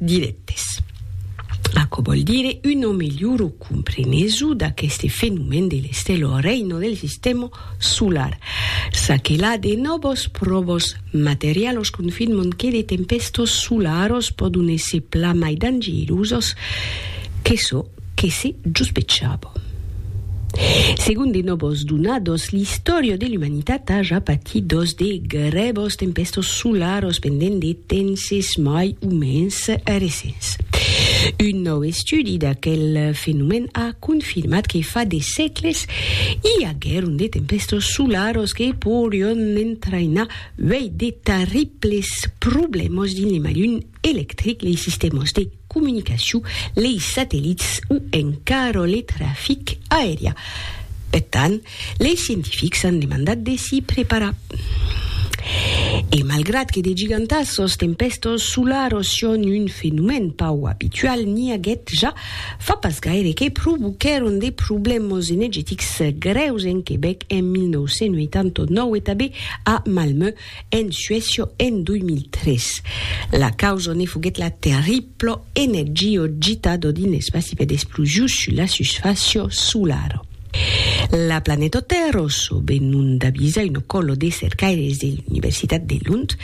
Dirèctes. Aquò vòl dire una melhora comprenesu d'aqueste fenomèn de l'estèla o reina del sistèma solar, ça que la de nòvas pròvas materialas confirman que de tempèstas solaras pòdon èsser plan mai dangerosas que çò Que se jospechava. Segon de nòbos donados, l'istòria de l'umanitat a ja patit dos de grèbos tempèstos solaros pendent de tenses mai o mens recents. Un nòu estudi d'aquel fenomèn a confirmat que fa de sègles i aguèron de tempèstos solaros que porion entrainar uèi de tarriples problèmas dins l'Emalun electric, lei sistèmas de comunicacion, lei satellits o encara le trafic aerià. Per tant, lei scientifics an demandat de s'i preparar. E malgrat que de gigantassas tempèstas solaras son un fenomèn pauc abitual, n'i aguèt ja fa pas gaire que provoquèron de problèmas enegetics grèus en Quebèc en 1989 e tanben a Malmö, En Suècia en 2003, la causa ne foguèt la terribla energio gitada dins l'espaci per d'explosions sus la susfàcia solara. La planeta Tèrra, çò be non d'avisa una còla de cercaires de l'Universitat de Lund,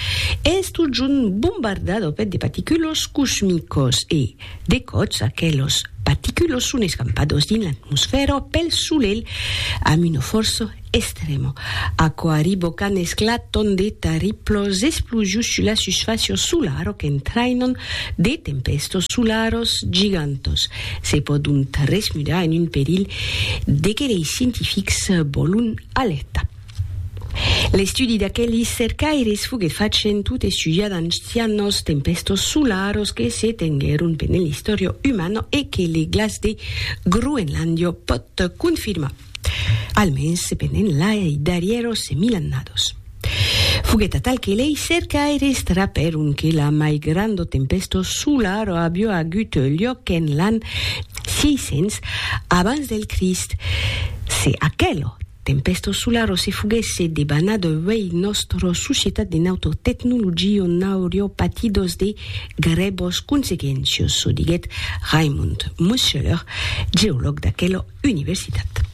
es totjorn bombardada per de paticulas cosmicas e, de còps, aquelas paticulas son escampadas dins l'atmosfèra pel Solelh amb una fòrça Estremo. Aquò arribo quand esclaton de tarriplos esplosions sus la susfàcio solar o qu'entrainon de tempèstos solaros gigantos. Se pòdon tresmudar en un perilh de que lei scientifics vòlon alertar. L'estudi d'aquelis cercaires foguèt fachent tot estudiar d'ancianos tempèstos solaros que se tenguèron pendent l'istòria umana e que le glaç de Groenlàndia pòt confirmar. Almens se penen lai darrièro se mil annados. Foguèt atal que lei cercaires trapèron que la mai granda tempèsta solara aviá agut luòc en l'an 600 abans del Crist. Se aquela tempèsta solara se foguèsse debanat uèi nòstra societat e nòstra tecnologia n'auriá patidos de grèvas consequéncias, çò diguèt Raimund Mosseler, geològ d'aquela universitat.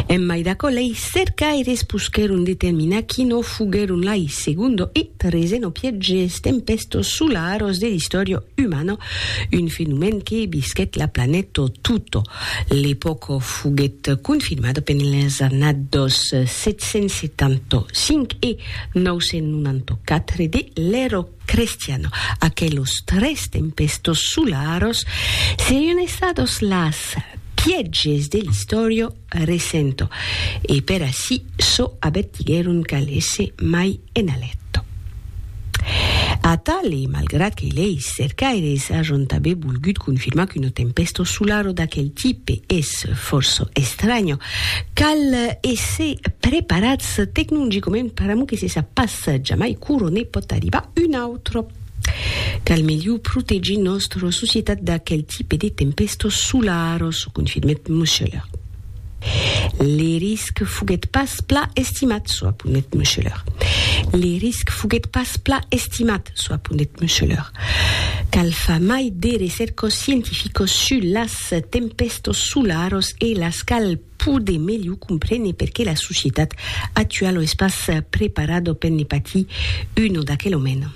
En mai d'aquò, lei cercaires poschèron determinar quinò foguèron lai segundo e treseno pièges tempèstos solaros de l'istòria umana, un fenomèn que visquèt la planeta tota. L'epòca foguèt confirmada pendent las annadas 775 e 994 de l'era Crestiano, aquelos tres tempestos solaros serion estados las pièges de l'istòria recento, e per ací çò avertiguèron Calèsse mai ena lecto. Atal e malgrat que leis cercaires ajon tanben volgut confirmar qu'uno tempesto solaro d'aquel tipe es fòrça estranya, cal èsser preparats tecnologicament per amor que se sap pas mas jamai curo ne pòt arribar un autre. Cal melhor protegir nòstra societat d'aquel tipe de tempèstos solaros, confirmèt Muscheler. Le risc foguèt pas pla estimat, çò aponèt Muscheler. Le risc foguèt pas pla estimat, çò aponèt Muscheler. Cal far mai de recercos scientificos sus las tempèstos solaros e las cal pòde melhor comprene perqué la societat actuala es pas preparada per ne patir una d'aquela mena.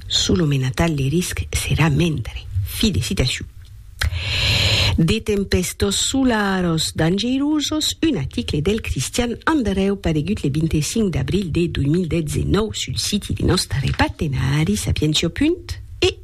Sus lo menatal de risc serà mendre. Fi de citacion. De tempèstas solaras dangerosas, un article del Cristian Andrèu paregut le 25 d'abril de 2019 sul siti de nòstre partenari Sapientia. Eu.